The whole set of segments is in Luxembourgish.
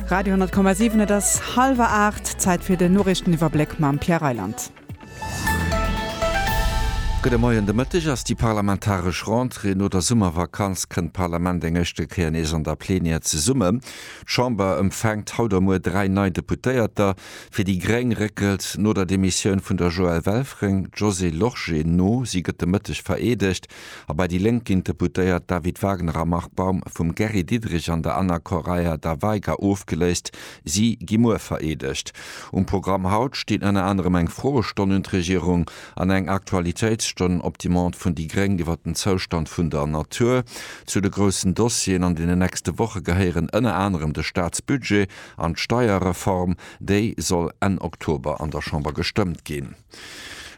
Radio 10,7 et ass halwer 8, Zäit fir den Noriichteniwwerbléck mam Pierre Reyland. Gudde Moien, de Mëtteg ass déi parlamentaresch Rentrée. No der Summervakanz kënnt d'Parlament eng éischte Kéier nees an der Plenière zesummen. D'Chamber empfänkt haut a muer dräi nei Deputéierter. Fir déi gréng réckelt no der Demissioun vun der Joëlle Welfring d'Josée Lorsché no. Si gëtt de Mëtteg vereedegt. A bei déi Lénk ginn d'Deputéiert David Wagner a Marc Baum vum Gary Diderich an der Anna Correia da Veiga ofgeléist. Si gi muer vereedegt. Um Programm haut stinn ënner anerem eng Froestonn un d'Regierung an eng Aktualitéitsstonn op Demande vun déi Gréng iwwer den Zoustand vun der Natur. Zu de groussen Dossieren an deenen nächste Woche gehéieren ënner anerem de Staatsbudget an d'Steierreform. Déi soll Enn Oktober an der Chamber gestëmmt ginn.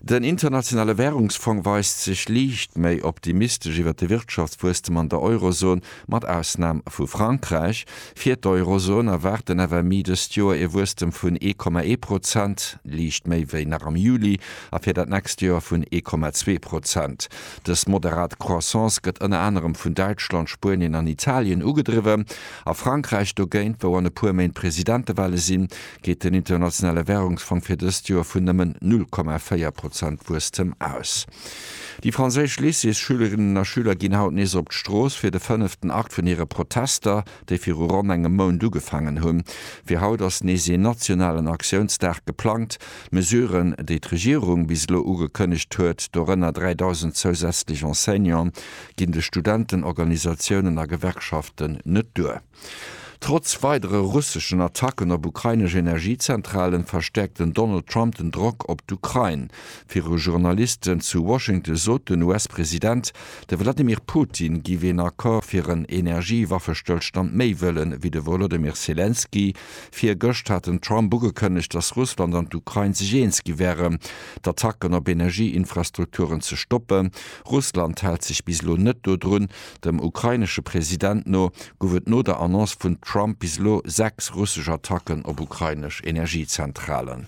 Den Internationale Wärungsfong weist sech liicht méi optimistesch iwwer de Wirtschaftswuesstem an der Eurozon, mat Ausnam vu Frankräich. Fir d'Eurozon erwaart den FMI dëst Joer ee Wuesstem vun 1,1 Prozent, liicht méi wéi nach am Juli, a fir dat nächst Joer vun 1,2 Prozent. Dës moderat Croissance gëtt ënner anerem vun Däitschland, Spuenien an Italien ugedriwwen. A Frankräich dogéint, wou an e puer Méint Presidentewahle sinn, geet den Internationale Währungsfong fir dëst Joer vun nëmmen 0,4 Prozent Wuesstem aus. Déi franséisch Lycéesschülerinnen a Schüler ginn haut nees op d'Strooss fir de fënneften Akt vun hire Protester, déi viru ronn engem Mount ugefaangen hunn. Fir haut ass nees een nationalen Aktiounsdag geplangt. D'Mesuren, déi d'Regierung bis elo ugekënnegt huet, dorënner 3.000 zousätzlech Enseignanten, ginn de Studentenorganisatiounen a Gewerkschaften net duer. Trotz weidere russeschen Attacken op ukrainesch Energiezentralen, verstäerkt den Donald Trump den Drock op d'Ukrain. Viru Journalisten zu Washington sot den US-President, de Wladimir Putin giff een Accord fir en Energiewaffestëllstand méi wëllen, ewéi de Wolodymyr Selenskyj. Virgëscht hat den Trump ugekënnegt, datt Russland an d'Ukrain sech eens gi wären, d'Attacken op Energieinfrastrukturen ze stoppen. Russland hält sech bis elo net dodrun, Dem ukrainesche President no gouf et no der Annonce vun Trump bis elo sechs russesch Attacken op ukrainesch Energiezentralen.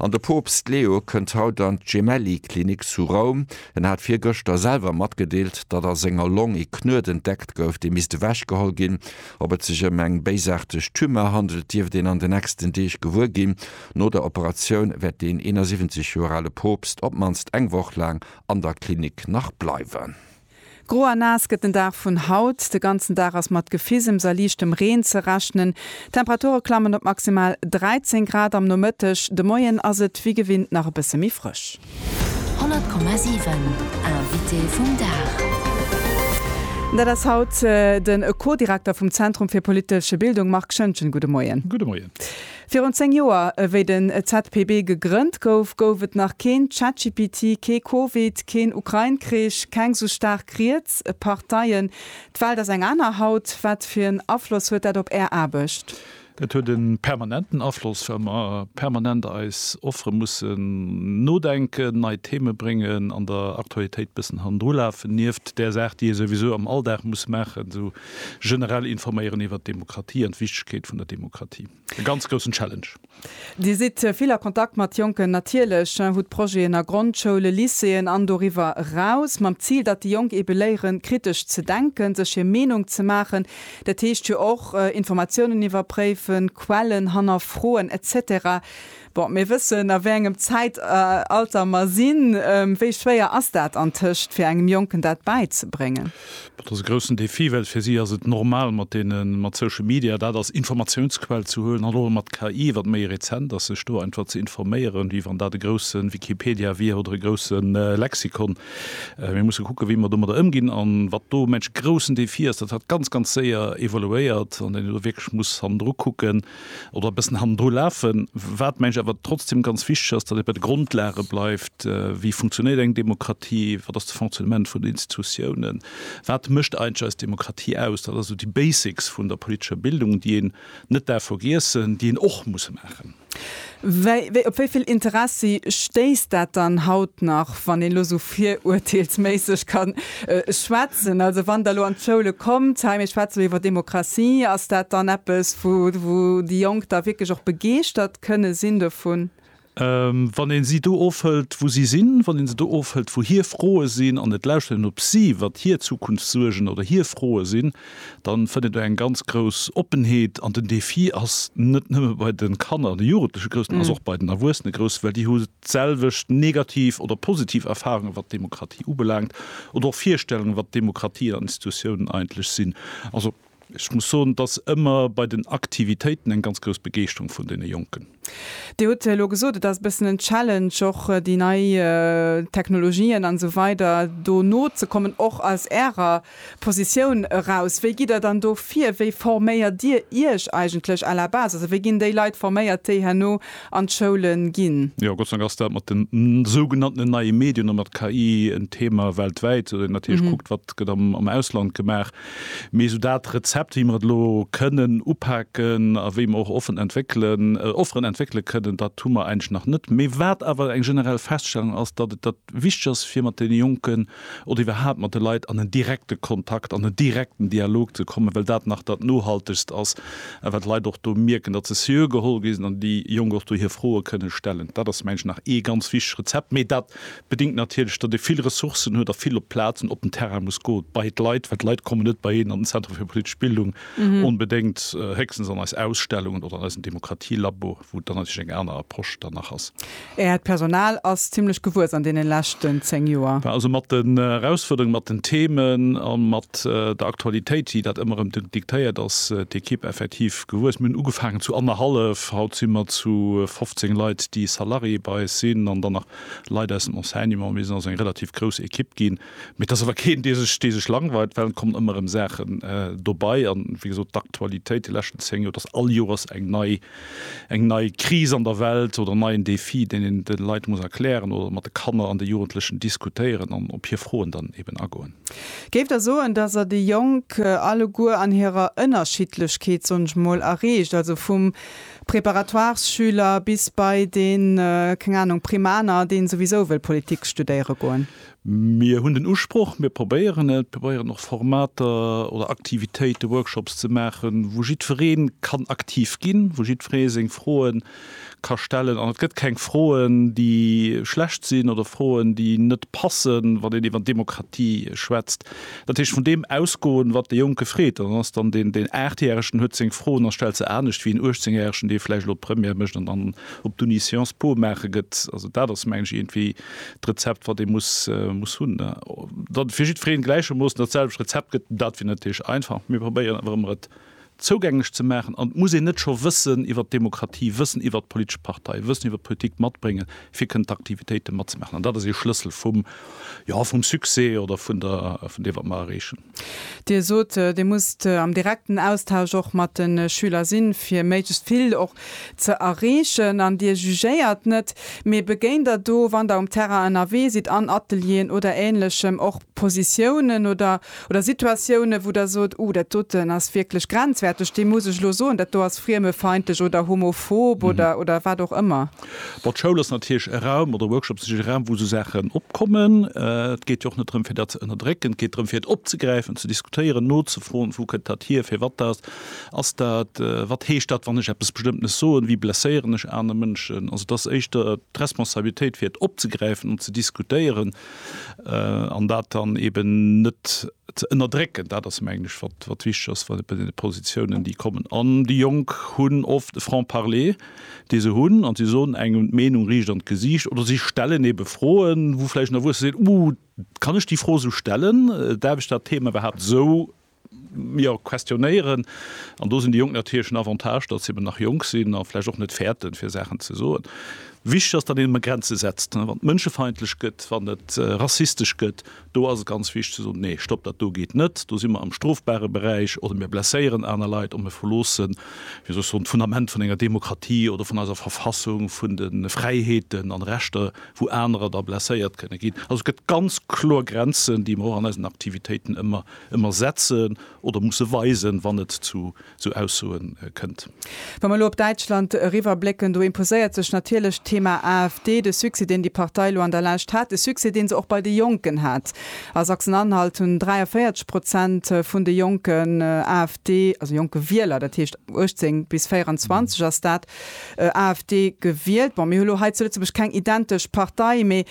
An de Poopst Leo kënnt haut an d'Gemelli Klinik zu Roum. En hat virgëschter selwer matgedeelt, datt a senger Long ee Knuet entdeckt gouf, dee misst ewech geholl ginn. Ob et sech ëm eng béisaarteg Tumeur handelt, dierft een an de nächsten Deeg gewuer ginn. No der Operatioun wäert deen 71 Joer ale Poopst op d'mannst eng Woch laang an der Klinik nach bleiwen. Gro a naass gëtt den Dag vun haut. De ganzen Dag ass mat Gefisems a liichtem Reen ze rechnen. D'Temperature klammen op maximal 13 Grad am Nomëtteg. De Moien ass et wéi gewinnt nach e bësse méi frësch. 100,7 Invité vum Dag. Dat ass haut de Co-Direkter vum Zentrum fir politesche Bildung Marc Schëngen. Gudde Moien. Gudde Moien. Virun 10 Joer, ewéi den ZPB gegrënnt gouf, gouf et nach keen ChatGPT, kee Covid, keen Ukrain-Krich, keng sou staark riets Parteien. D'Welt ass eng aner haut. Wat fir en Afloss huet dat op Är Aarbecht? Dat huet e permanenten Afloss, well mer permanent eis Offere mussen nodenken, nei Theme bréngen, an der Aktualitéit bëssen hannendrulafen, nieft där Saach, déi ee souwisou am Alldag muss maachen, esou Generell informéieren iwwert d'Demokratie an d'Wichtegkeet vun der Demokratie. E ganz groussen Challenge. Dir sidd vill a Kontakt mat Jonken, natierlech, hutt Projeten a Grondschoulen, Lycéeën an doriwwer eraus, mam Zil, datt déi Jonk eebe léieren, kritesch ze denken, sech hir Meenung ze maachen. Dat heescht jo och Informatiounen iwwerpréifen, Quellen hannerfroen, etc. Bon, mir wëssen a wéi engem Zäitalter mer sinn. Wéi schwéier ass dat antëscht fir engem Jonken dat bäizebréngen? Dat ass e groussen Defi, well fir si ass et normal mat deenen, mat Social Media dat als Informatiounsquell ze huelen an och mat KI, wat méi rezent ass, sech do einfach ze informéieren, wéi wann dat e groussen Wikipedia wier oder e groussen Lexikon. Mir musse kucken, wéi mer domadder ëmginn an wat do mensch groussen Defi ass, dat hat ganz, ganz séier evoluéiert an deen een elo wierklech muss hannendru kucken, oder e bëssen hannendru lafen. Wat, mengen ech, awer trotzdem ganz wichteg ass, datt ee bei de Grondlage bleift, Wéi funktionéiert eng Demokratie? Wat ass de Fonctionnement vun den Institutiounen? Wat mécht eigentlech eis Demokratie aus? Dat ass esou déi Basics vun der politescher Bildung, déi een net daf vergiessen, déi een och muss maachen. Op wéi vill Interessi stéisst dat dann haut nach, wann een elo esou virurteelsméisseg ka schwätzen? Also wann Der elo an d'Schoule kommt, hei mir schwätze elo iwwer Demokratie, ass dat dann eppes, wou déi Jonk da wierklech och begeeschtert kënne sinn dovun? Wann ee si do ofhëlt, wou si sinn, wann ee se do ofhëlt, wou hir Froe sinn, an et lauschtert een op si, wat hir Zukunftssuergen oder hir Froe sinn, dann fënnt do eng ganz grouss Oppenheet an den Defi ass net nëmme bei de Kanner an de Jugendleche grouss, den ass och bei den Erwuessene grouss, well déi hu d'selwecht negativ oder positiv Erfahrungen, wat d'Demokratie ubelaangt, oder och Virstellungen, wat Demokratie an Institutionen eigentlech sinn. Also ech muss soen, et ass ëmmer bei den Aktivitéiten eng ganz grouss Begeeschterung vun deene Jonken. Dir hutt elo gesot, et ass e bëssen en Challenge, och déi nei Technologien an esou weider do nozekommen, och aus Ärer Positioun eraus. Wéi gitt Der dann do vir? Wéi forméiert Dir Iech eigentlech à la base? Also wéi ginn déi Leit forméiert, déi herno an d'Schoule ginn? Jo, Gott sei Dank ass dat mat den sougenanntenen neie Medien a mat KI en Thema weltwäit, natierlech kuckt, wat gëtt am Ausland gemaach. Mee esou dat Rezept, wéi mer et elo kënnen upaken a wéi mer och offen entwéckelen, Offeren entwéckele kënnen, dat hu mer eigentlech nach net. Mee wat awer eng generell Feststellung ass, datt et dat wichteg ass, fir mat deene Jonken oder iwwerhaapt mat de Leit an en direkte Kontakt, an en direkten Dialog ze kommen, well dat nach dat Nohaltegst ass a wat d'Leit och do mierken, datt se seriö geholl gi sinn an déi Jonk och do hir Froe kënnen stellen. Dat ass mengen ech nach ee ganz wichtegt Rezept. Mee dat Bedingt natierlech, datt ee vill Ressourcen huet a vill op d'Plaz an op den Terrain muss go bei d'Leit, well d'Leit kommen net bei een an den Centre fir politesch Bildung onbedéngt, héchstens an eis Ausstellungen oder an eisen Demokratie-Labo, wou dann natierlech eng aner Approche dann nach ass. Äert Personal ass zimmlech gewuess an deene leschten zéng Joer. Mä also mat den Erausfuerderungen, mat den Themen a mat der Aktualitéit, déi dat ëmmer erëm diktéiert, ass d'Equipe effektiv Gewuess. Mir hunn ugefaangen zu annerhallef, haut si mer zu 15 Leit, déi Salarié bei eis sinn an dann nach Leit aus dem Enseignement. Mir sinn also eng relativ grouss Ekipp ginn. Mee et ass awer keen, dee sech, dee sech langweilt, well et kommen ëmmer erëm Saachen dobei. An wéi gesot, d'Aktualitéit déi leschten 10 Joer, et ass all Joers eng nei, eng nei Kris an der Welt oder en neien Défi, deen een de Leit muss erklären oder mat de Kanner an de Jugendlechen diskutéieren an op hir Froen dann eben agoen. Géif da soen, dass Der déi Jonk alleguer an hirer Ënnerschiddlechkeet, soen ech mol, erreecht, also vum Préparatoires-Schüler bis bei dee, keng Ahnung, Primaner, dee souwisou wëll Politik studéiere goen? Mir hunn den Usproch, mir probéieren et, mir probéieren och Formater oder Aktivitéiten, Workshops ze maachen, wou jiddweree kann aktiv ginn, wou jiddweree seng Froen ka stellen an et gëtt keng Froen, déi schlecht sinn oder Froen, déi net passen, wann een iwwer Demokratie schwätzt. Dat heescht, vun deem ausgoen, wat de Jonke freet, an dann ass dann deen, deen Aachtjäregen huet seng Froen a stellt se anescht wéi en Uechtzengjäregen, dee vläicht elo d'Première mécht an dann op d'Uni Sciences Po maache gëtt. Also dat ass, mengen ech, iergendwéi d'Rezept, wat ee muss, muss hunn. Datt et fir jiddwereen gläichermoossen dat selwecht Rezept gëtt, dat wier natierlech einfach, mee probéieren awer ëmmer et zougänglech ze maachen, an et muss een net scho Wëssen iwwert d'Demokratie, Wëssen iwwert d'politesch Partei, Wëssen iwwert d'Politik matbréngen, fir kënnen d'Aktivitéite matzemaachen. An dat ass ee Schlëssel vum, jo, vum Succès oder vun der, vun deem, wat mer erreechen. Dir sot, Dir musst am direkten Austausch och mat de Schüler sinn, fir méiglechst vill och ze erreechen. An Dir jugéiert net, mee begéint Der do, wann Der um Terrain ënnerwee sidd, an Atelieren oder Änlechem, och Positiounen oder Oder Situatiounen, wou Der sot, Uh, dat doten ass wierklech grenzwäerteg, dee muss ech elo soen, dat do ass friemefeindlech oder homophob oder, oder wat och ëmmer. Bon, d'Schoul ass natierlech e Raum, oder Workshops sinn e Raum, wou esou Saachen opkommen. Et geet jo och net drëm, fir dat ze ënnerdrécken. Et geet drëm, fir et opzegräifen, ze diskutéieren, nozefroen, Wou kënnt dat hier? Firwat dat? Ass dat, wat heescht dat, wann ech eppes Bestëmmtenes soen? Wéi blesséieren ech aner Mënschen? Also, et ass éischter d'Responsabilitéit, fir et opzegräifen an ze diskutéieren. an dat dann eben net ze ënnerdrécken. Dat ass mengen ech wat wat wichteg ass bei bei deene Positiounen déi kommen. An déi Jonk hunn oft e Franc parler dee se hunn an si soen engem d'Meenung riicht an d'Gesiicht oder si stellen ebe Froen wou vläicht en Erwuesse seet, Uh kann ech déi Fro esou stellen? Daerf ech dat Thema iwwerhaapt esou jo, questionéieren. An do sinn déi Jonk natierlech en Avantage, datt se eben nach jonk sinn a vläicht och net fäerten, fir Saachen ze soen. Wichteg ass, datt een ëmmer Grenze setzt. Wann et mënschefeindlech gëtt, wann et rassistesch gëtt, do ass et ganz wichteg ze soen, Nee, stopp, dat do geet net. Do si mer am strofbare Beräich. Oder mir blesséieren aner Leit oder mir verloosse, wéi soll ech soen, d'Fundament vun enger Demokratie oder vun eiser Verfassung, vun de Fräiheeten an Rechter, wou anerer da blesséiert kënne ginn. Also et gëtt ganz kloer Grenzen, déi mer och an eisen Aktivitéiten ëmmer Ëmmer setzen oder musse weisen, wann et zu sou Aussoe kënnt. Wa mer elo op Däitschland eriwwerblécken, do imposéiert sech natierlech d'Thema AfD. De Succès, deen déi Partei elo an der Lescht hat, de Succès, dee se och bei de Jonken hat. A Sachsen-Anhalt hunn 43 Prozent vun de Jonken AfD, also jonke Wieler, dat heescht 18 bis 24 ass dat, AfD gewielt. Bon, mir hu lo hei zu Lëtzebuerg keng identesch Partei, mee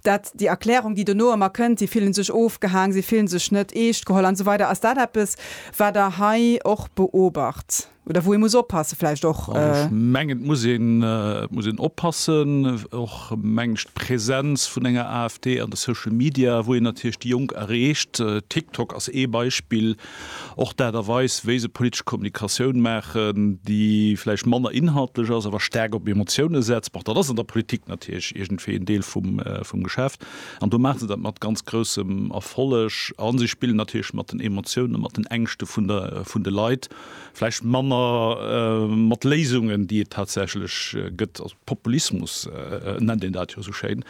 Dat déi Erklärung, déi dono ëmmer kënnt, si fillen sech ofgehaang, si fillen sech net eescht geholl an esou weider. Ass dat eppes, wat Der hei och beobacht oder wou ee muss oppassen vläicht och? Ech mengen, et muss een, et muss een oppassen, och meng ech d'Präsenz vun enger AfD an de Social Media, wou een natierlech déi Jonk erreecht. TikTok ass ee Beispill. Och d'Aart a Weis, wéi se politesch Kommunikatioun maachen, déi vläicht manner inhaltlech ass, awer staark op Emotioune setzt, bon, dat ass an der Politik natierlech iergendwéi en Deel vum Geschäft. An do maache se dat mat ganz groussem Erfolleg. A si spillen natierlech mat den Emotiounen, mat den Ängschte vun de Leit, vläicht manner mat Léisungen, déi et tatsächlech gëtt. Populismus nennt een dat jo esou schéin.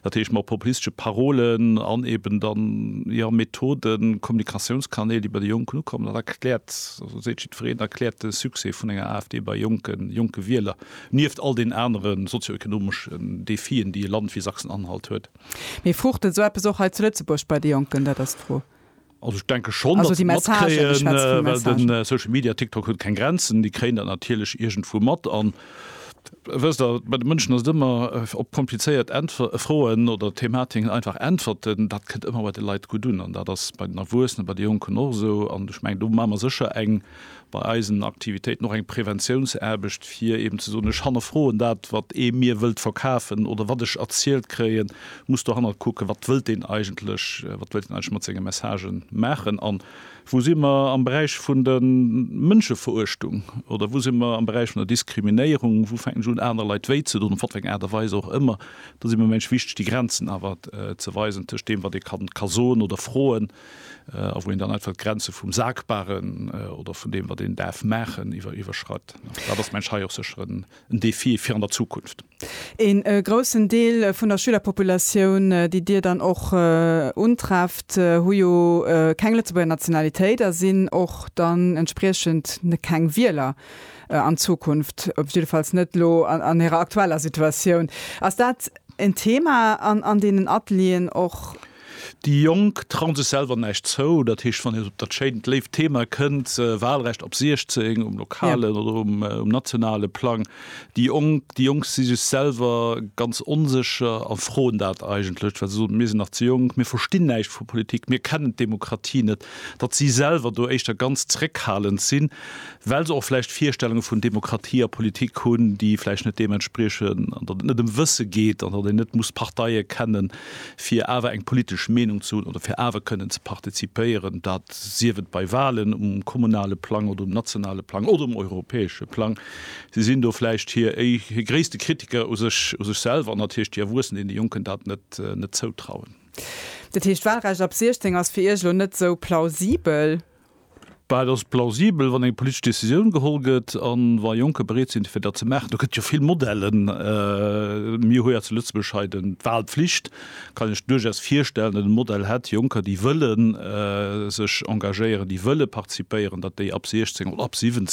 Dat heescht, mat populistesche Parolen an eben dann, jo, Methoden, Kommunikatiounskanäl, déi bei de Jonken ukommen. Dat erkläert, also seet jiddwereen, erkläert de Succès vun enger AfD bei jonken, jonke Wieler, nieft all den anere sozioökonomeschen Defien, déi e Land wéi Sachsen-Anhalt huet. Mee fruucht esou eppes och hei zu Lëtzebuerg bei de Jonken? Dat ass d'Fro. Also ech denke schonn, datt se matkréien, well de Social Media, TikTok huet keng Grenzen, déi kréien dat natierlech iergendwou mat. An wësst Der, bei de Mënschen ass et ëmmer, op komplizéiert Äntwer Froen oder Thematiken einfach Äntwerten, dat kënnt ëmmer bei de Leit gutt un. An dat ass bei den Erwuessenen, bei de Jonken och esou. An ech mengen, do maache mer sécher eng bei eisen Aktivitéiten och eng Präventiounsaarbecht, fir eben ze soen, ech hannerfroen dat, wat ee mir wëllt verkafen oder wat ech erzielt kréien, muss dohannert kucken, wat wëllt deen eigentlech, wat wëllt deen eigentlech mat senge Messagen maachen. An wou si mer am Beräich vun der Mënscheveruechtung oder wou si mer am Beräich vun der Diskriminéierung, wou fänken ech un aner Leit wéi ze doen, op wat fir eng Aart a Weis och ëmmer, do si mer, meng ech, wichteg, déi Grenzen awer ze weisen tëscht deem, wat ee ka soen oder froen, a wou een dann einfach d'Grenze vum Sagbaren oder vun deem, wat een däerf maachen, iwwerschreit. Dat ass, mengen ech, hei och sécher en Defi fir an der Zukunft. Een groussen Deel vun der Schülerpopulatioun, déi Dir dann och untrefft, hu jo keng Lëtzebuerger Nationalitéit a sinn och dann entspriechend keng Wieler an Zukunft, jiddefalls net elo an hirer aktueller Situatioun. Ass dat en Thema an deenen Atelieren och? Déi Jonk trauen sech selwer näischt zou. Dat heescht, wann een op dat schéint, léift Thema kënnt, Walrecht ab 16, um lokalen oder um nationale Plang, déi Jonk, déi Jonk si sech selwer ganz onsécher a froen dat eigentlech, well se soen, mir sinn nach ze jonk, mir verstinn näischt vu Politik, mir kennen d'Demokratie net, datt si selwer do éischter ganz zréckhalend sinn, well se och vläicht Virstellunge vun Demokratie a Politik hunn, déi vläicht net deem entspriechen, an datt et net ëm Wësse geet an datt een net muss d'Parteie kennen. fir awer eng politesch Meenung ze hunn oder fir awer kënnen ze partizipéieren, dat sief et bei Wahlen um kommunale Plang oder um nationale Plang oder um europäesche Plang. Si sinn do vläicht hir gréisste Kritiker u sech u sech selwer an natierlech déi Erwuessen, deenen déi Jonken dat net net zoutrauen. Dat heescht, d'Wahlrecht ab 16 ass fir Iech elo net esou plausibel? Bah, et ass plausibel, wann eng politesch Decisioun geholl gëtt a wa Jonker bereet sinn, fir dat ze maachen. Do gëtt jo vill Modellen. Mir hu jo zu Lëtzebuerg hei d'Wahlpflicht. Kann ech duerchaus virstellen, datt e Modell hätt, Jonker, déi wëlle sech engagéieren, déi wëlle participéieren, datt déi ab 16 oder ab 17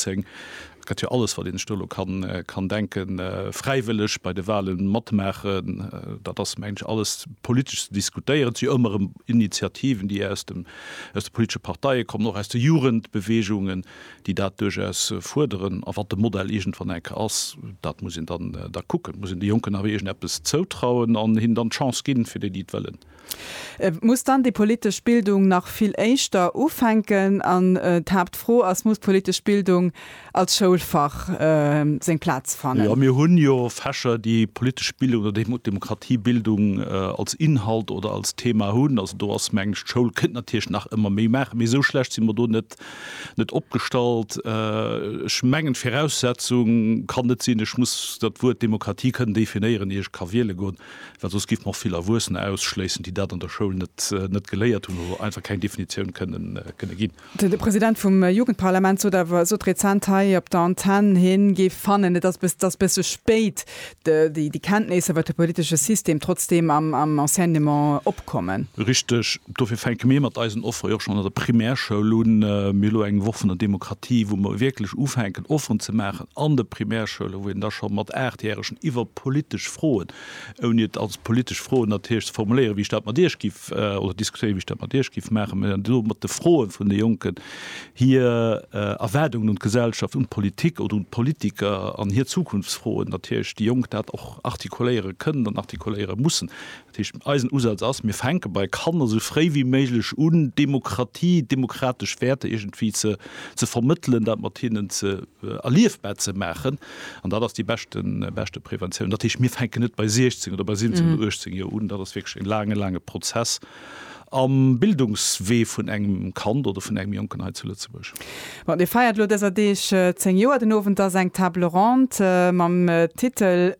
Et gëtt jo alles, wat een sech do elo kann denken, fräiwëlleg bei de Wahle matmaachen. Dat ass, mengen ech, alles politesch ze diskutéieren. Et si jo ëmmer erëm Initiativen, déi aus de politesche Parteie kommen, och aus de Jugendbewegungen, déi dat duerchaus fuerderen. A wat de Modell iergendwann eng Kéier ass, dat muss een dann da kucken. Et muss een de Jonken awer iergendeppes zoutrauen an hinnen dann d'Chance ginn, fir déi, déi et wëllen. Et muss dann déi politesch Bildung nach vill éischter ufänken an d'Haaptfro ass, Muss d'politesch Bildung als Schoulfach seng Plaz fannen? Mir hunn jo Fächer, déi politesch Bildung oder Demokratiebildung als Inhalt oder als Thema hunn. Also do ass, mengen ech, d'Schoul kënnt natierlech nach ëmmer méi maachen, mee esou schlecht si mer do net opgestallt. Ech mengen, d'Viraussetzung kann net sinn, ech muss dat Wuert Demokratie kënnen definéieren, ier ech ka wiele goen. well soss géife mer och vill Erwuessener ausschléissen, déi dat an der Schoul net geléiert hunn oder einfach keng Definitioun kënne ginn. De President vum Jugendparlament sot awer, sot rezent hei op der Antenn, hie géif fannen, et ass bësse spéit, déi Kenntnéisser, wat de politesche System, trotzdeem am Enseignement opkommen. Richteg. Dofir fänke mir mat eisen Offere jo och schonn an der Primärschoul un. Mir hu elo eng Woch vun der Demokratie, wou mer wierklech ufänken, Offeren ze maachen an de Primärschoule, wou een da scho mat Aachtjähregen iwwer politesch Froen, ouni et als politesch Froen natierlech ze formuléieren, wéi ech dat mat Iech giff, oder diskutéieren, wéi ech dat mat Iech giff maachen, mä elo mat de Froe vun de Jonken, hir Erwaardungen un d'Gesellschaft, un d'Politik oder un d'Politiker an hir Zukunftsfroen natierlech, déi Jonk dat och artikuléiere kënnen an artikuléiere mussen. Dat heescht, eisen Usaz ass, mir fänke bei Kanner esou fréi wéi méiglech un, Demokratie, demokratesch Wäerter iergendwéi ze, ze vermëttelen, dat mat hinnen ze, erliefbar ze maachen. An dat ass déi beschte, beschte Preventioun. Dat heescht, mir fänken net bei 16 oder bei 17 oder 18 Joer un. Dat ass wierklech e laange, laange Prozess am Bildungswee vun engem Kand oder vun engem Jonken hei zu Lëtzebuerg. Bon, Dir feiert elo dëser Deeg 10 Joer. Den Owend ass eng Table ronde mam Titel,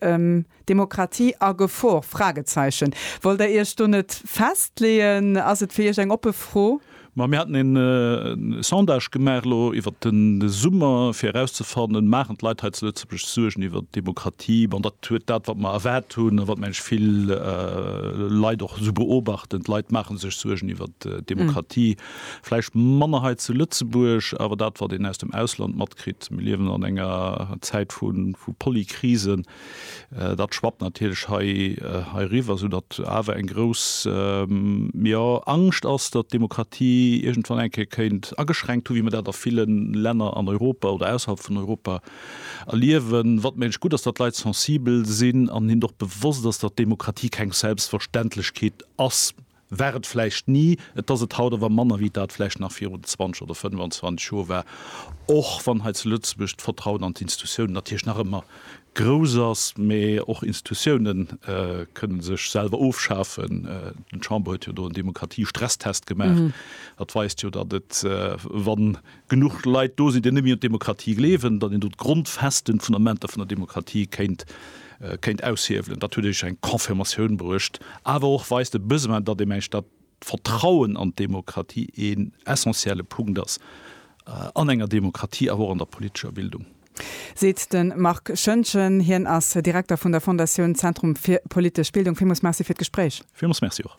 Demokratie a Gefor? Fragezeichen Wollt der Iech do net festleeën? Ass et fir Iech eng oppe Fro? Ma mir haten een Sondage gemaach elo iwwert de Summer fir erauszefannen, maachen d'Leit hei zu Lëtzebuerg sech Suergen iwwert d'Demokratie? Bon, dat huet dat wat mer erwaart hunn a wat mengen ech vill Leit och esou beobachten. D'Leit maache sech Suergen iwwert d'Demokratie, vläicht manner hei zu Lëtzebuerg, awer dat wat een aus dem Ausland matkritt, mir liewen an enger Zäit vu Polykrisen, Dat schwappt natierlech hei heiriwwer, soudatt awer eng grouss, jo, Angscht ass, datt d'Demokratie iergendwann eng Kéier kéint ageschränkt hu wéi mer dat a ville Länner an Europa oder ausserhalb vun Europa erliewen. Wat mengt gutt ass, datt d'Leit sensibel sinn an hinnen och bewosst ass, datt d'Demokratie keng Selbstverständlechkeet ass. War et vläicht ni, et ass et haut awer manner wéi dat vläicht nach virun 20 oder 25 Joer war, och wann hei zu Lëtzebuerg d'Vertrauen an d'Institutiounen natierlech nach ëmmer grouss ass. Mä och Institutioune kënne sech selwer ofschafen. D'Chamber huet jo do en Demokratie-Stresstest gemaach. Dat weist jo, datt et, wann genuch Leit do sinn, déi net méi un d'Demokratie gleewen, datt een do d'grondfesten Fundamenter vun der Demokratie kéint kéint aushiewelen. Dat huet iech eng Confirmatioun bruecht, awer och weist de Besoin, datt ee mengt, datt d'Vertrauen an d'Demokratie een essentielle Punkt ass an enger Demokratie, awer och an der politescher Bildung. Seet de Marc Schöntgen. Hien ass Direkter vun der Fondatioun Zentrum fir politesch Bildung. Villmools Merci fir d'Gespréich. Villmools Merci och.